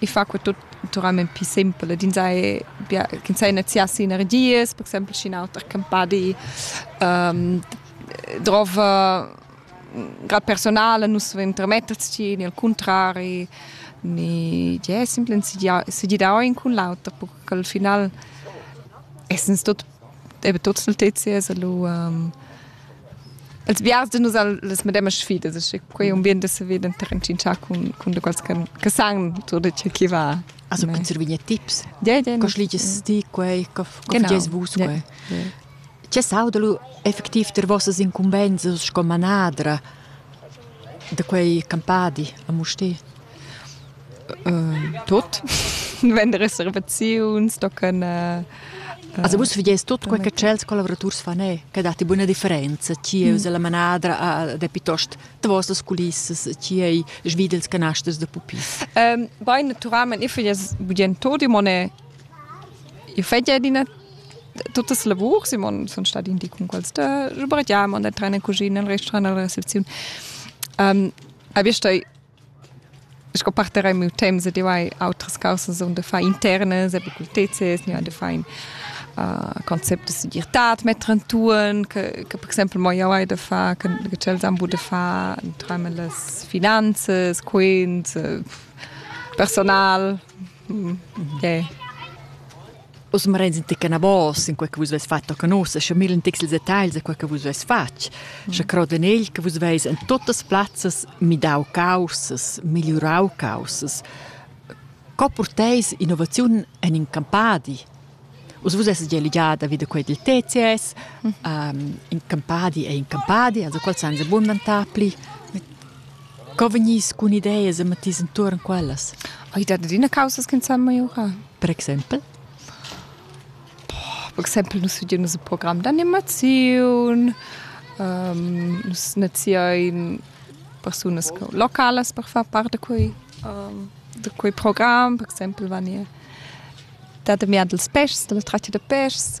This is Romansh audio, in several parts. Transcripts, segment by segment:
i fa que tut naturalment pi simpel ed ins sai bia ch'ins sai neziar si energias, per exempel sc'in auter campadi ehm drov grad personal nus vein intermetters tgi ni al cuntrari ni tgei simpel segiar segirar in cun l'auter per ch'al final essens tut eben tot nel TCS allo um, els vias de nus al, les medemas sfidas, e quei ambient de se veden trencincià cun, cun de quals che, che san tutto ciò che va. Also con servini tips. Ja, ja. Cos liges ti quei, co fages vus quei. Ce saudalu effettiv ter vossas incumbenses sco manadra de quei campadi a Musti? Tut vender reservaziuns, tocan Also vus vedies tut quei che tschels collaboraturs fan e che datti buona differenza chi es la manadra da pitost tvosas culissas chi ei svidels canasters da pupis. Bain naturalment ich vedies budien tot imone ich fetja adina tuttas lavurs, imon sun stati in di cun quels da sbratiam, an der trener cuschina, al restaurant, alla recepziun. A bist sco parter ei miu temps ed eu hai outras causas on da far internas, epi cultezes, gnü da far in uh, concept da segirtad metter entuorn, che, che per exempel mo jau hai da far, che, che tschels han bu da far intrame las finanzas, quint, personal, mm, yeah. Oz marenda ti canavos in quei che vus veis fatg a canusa, sche millen tics ils detagls a quei che vus veis fatg, sche crod en egl che vus veis en tuttas plazzas midau causas, migliurau causas. Co porteis innovaziun en in campadi? Us vus esses gia ligada vid quei dil TCS, um, in campadi è in campadi, also qual san se bun dantapli. Co vegnis cun ideas e matiss entuorn quellas? Ei dat adina causas ch'ins sa miurar. Per exempel? Per exempel nus studein nus in program d'animaziun, um, nus naziein persunas localas per far part da quei, um, da quei program. Per exempel vegni dad amiar dils pèschs, dalla tratga da pèschs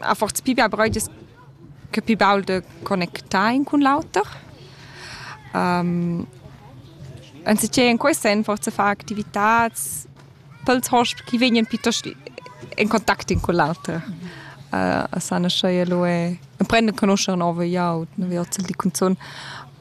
ha forse più bia breuges che più baul de connectar in cun l'auter. Um, anziché in quei sen forse far activitats pels hosp chi vegnan piuttosto in contact in con l'auter. Uh, a sana schei lu e prende conoscere nove jaut, ne vi ozel di cunzun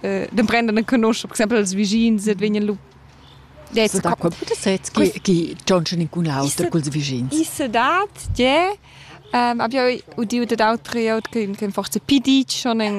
d'emprender a conoscere, per esempio, els vicins et vegnan lu Jetzt da quel puter set che che Johnson incun auter col vicins. I se dat je ähm abia udiu dat autre aut che che forse pidi schon in